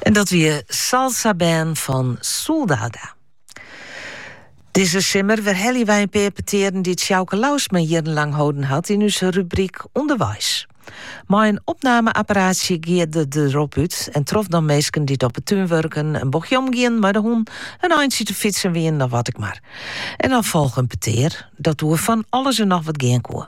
En dat wie Salsa Band fan Soldada. Dizze simmer werhelje wy in pear petearen dy't Sjouke Lousma jierrenlang holden hat yn ús rubryk Underweis. Mei in opname-apparaatsje gie er derop út en trof dan minsken dy't op 'e tún wurken, in bochtje omgien mei de hûn, in eintsje te fytsen wienen of wat ek mar. En dan folge in petear dat oer fan alles en noch wat gean koe.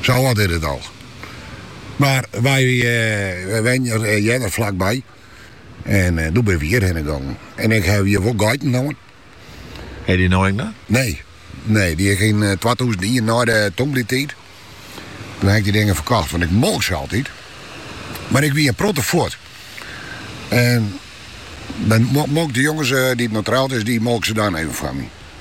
Sa âld is it al. Mar wy wenjen earder flakby en doe binne wy hjirhinne gongen. En ik haw hjir wol geiten hân. No net? Nee, nee, dy haw ik yn twatûzen ien nei de tongbliertiid. Toen haw ik dy dingen ferkocht, want ik molk se altyd. Mar ik wie in protte fuort. En dan molk de jonges dy't net troud is, dy molk se dan even foar my.